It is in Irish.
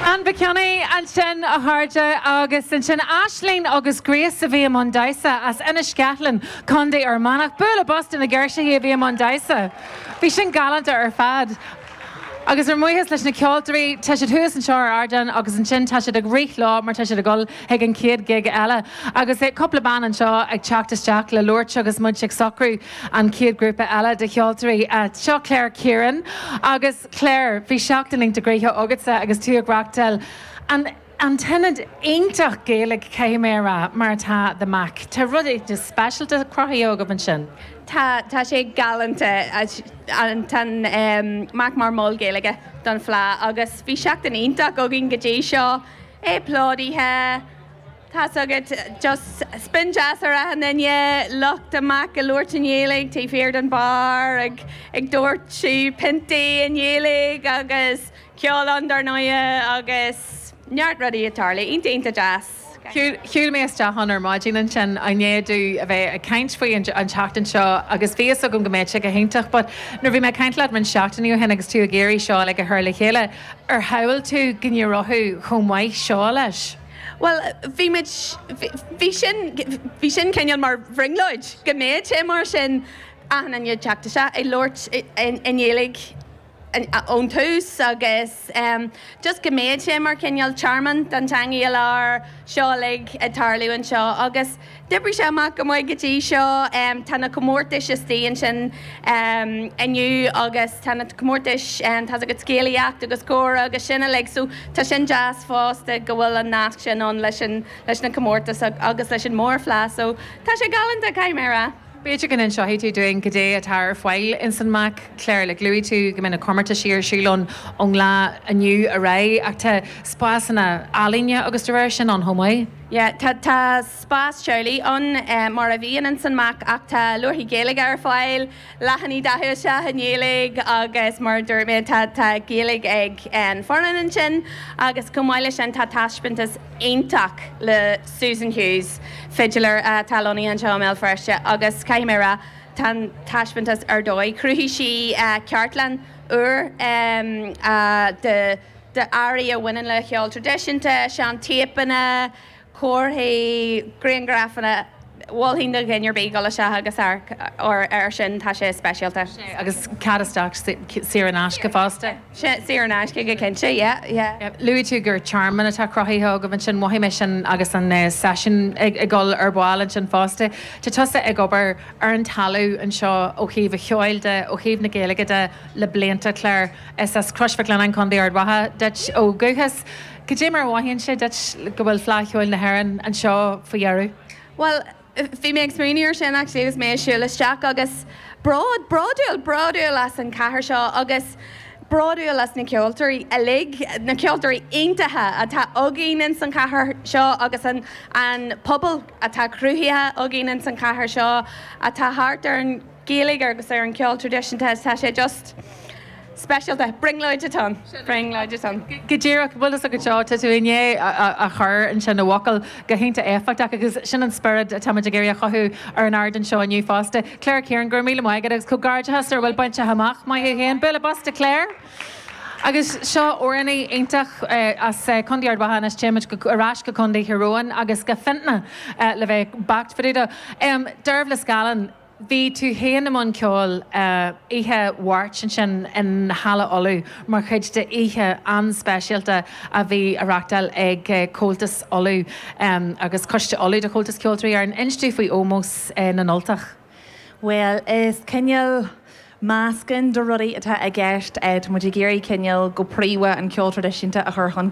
An bacach,, ansin a chairde, agus ansin Aisling agus Grace a bhí i mbun damhsa, as Inis Ceathlainn, Contae Fhear Manach. Bualadh bos do na girseachaí a bhí i mbun damhsa. Bhí sin galánta ar fad. Agus ár mbuíochas leis na ceoltóirí, tá siad thuas anseo ar ardán agus ansin tá siad ag rith leo mar tá siad ag dul chuig an chéad ghig eile. Agus cúpla bean anseo ag teacht isteach le labhairt agus muid ag socrú. An chéad grúpa eile de cheoltóirí. Seo Claire Kieran agus Claire, bhí seachtain iontach gnoitheach agatsa agus tú ag reachtáil an an ionad iontach Gaeilge caithfidh mé a rá mar atá The Mac. Tá rud éigin speisialta cruthaithe agaibh ansin. Tá, tá sé galánta. Tá an Mac mar mol Gaeilge don Fhleadh agus bhí seachtain iontach againn go dtí seo, é plódaithe, Tá's agat, just spion deas ar achan duine, lucht an Mac ag labhairt i nGaeilge taobh thiar den bheár ag ag dóirteadh piontaí i nGaeilge agus ceol ann dár ndóighe agus neart rudaí ag tarlú. Iontach, iontach deas. Shiúil mé isteach ann ar maidin ansin i ndiaidh domh a bheith ag caint faoi an an tseachtain seo agus bhí fhios agam go mbeadh sé go hiontach but nuair bhí mé ag caint leat roinnt seachtainí ó shin agus tú ag iarraidh seo like a chur le chéile, ar shamhlaigh tú go n-éireodh chomh maith seo leis? Bhuel, bhí muid, bhí sin, bhí sin cineál mar bhrionglóid, go mbeadh sé mar sin achan nduine ag teacht isteach, ag labhairt i nGaeilge ón tús agus just go mbeadh sé mar cineál tearmann don teangaidh i lár, seo uilig ag tarlú anseo agus. D'oibrigh sé amach go maith go dtí seo. Tá na comórtais istigh ansin inniu agus tá na comórtais, tá's agat, scéalaíocht agus comhrá agus sin uilig so tá sin deas fosta go bhfuil an nasc sin ann leis na comórtais agus leis an mhórfhleadh so tá sé galánta, caithfidh mé a rá. B'fhéidir go n-inseoidh tú dúinn goidé atá ar fáil ins an Mac, Clare, like luaigh tú go mbeidh na comórtaisí ar siúl ann ón lá inniu ar aghaidh ach tá spásanna ealaíne agus de réir sin ann chomh maith? Yeah, tá, tá spás teaghlaigh ann, eh, mar a bhí ann ins an Mac, ach tá leabharthaí Gaeilge ar fáil, leathanaigh dathú isteach i nGaeilge agus mar a dúirt mé, tá, tá Gaeilge ag an fhoireann ansin agus chomh maith leis sin tá taispeántas iontach le Susan Hughes, fidiléir atá lonnaithe anseo i mBéal Feirste agus caithfidh mé a rá, tá an taispeántas ar dóigh. Chruthaigh sí, eh, cartlann úr, em, ah, de. d'earraí a bhaineann le ceol tradisiúnta, seantéipeanna, comharthaí, griangrafanna. Mholfainn do dhuine ar bith dul isteach agus amharc air sin, tá sé speisialta. Sea, agus cead isteach saor in aisce fosta? Sea, saor in aisce go cinnte, yeah, yeah. Luaigh tú gur tearmann atá cruthaithe agaibh ansin, mhothaigh mé sin agus an seisiún ag dul ar ball ansin fosta. Tá tusa ag obair ar an talamh anseo ó thaobh an cheoil de, ó thaobh na Gaeilge de le blianta, Clare. Is as Crois Mhic Lionnáin, Co. Ard Mhacha, duit ó dhúchas. Cad é mar a mhothaíonn sé duit go bhfuil Fleadh Cheoil na hÉireann anseo faoi dheireadh? Bhuel, bhí mé ag smaoineamh air sin actually agus mé ag siúl isteach agus bród, bródúil, bródúil as an chathair seo agus bródúil as na ceoltóirí uilig, na ceoltóirí iontacha atá againn ins an chathair seo agus an, an pobal atá cruthaithe againn ins an chathair seo atá thart ar an, Gaeilge agus ar an gceol traidisiúnta is tá sé just speisialta. Brionglóid atá ann. Brionglóid atá ann. Go díreach. Bhuel, is ar ndóigh seo. Tá tú i ndiaidh a chur ansin i bhfocail go hiontach éifeachtach agus sin an spiorad atáimid ag iarraidh a chothú ar an ardán seo inniu fosta. Claire Kieran, go raibh míle maith agat agus comhghairdeachas ar a bhfuil bainte amach. Maith thú féin. Bualadh bos do Claire. Agus sin Eirnín iontach as Contae Ard Mhacha anois. Téimid ar ais go Contae Thír Eoghain agus go Fionntamhnach le bheith beacht fá dtaobh de. Dearbhla Scallon. Bhí tú féin i mbun ceoil oíche Mháirt ansin i Halla Uladh mar chuid d'oíche an-speisialta a bhí á reáchtáil ag Comhaltas Uladh agus Coiste Uladh de Chomhaltas Ceoltóirí Éireann, inis dúinn faoi Ómós na nUltach. Bhuel, is cineál meascán de rudaí atá i gceist. Tá muid ag iarraidh cineál, go príomha, an ceol traidisiúnta a chur chun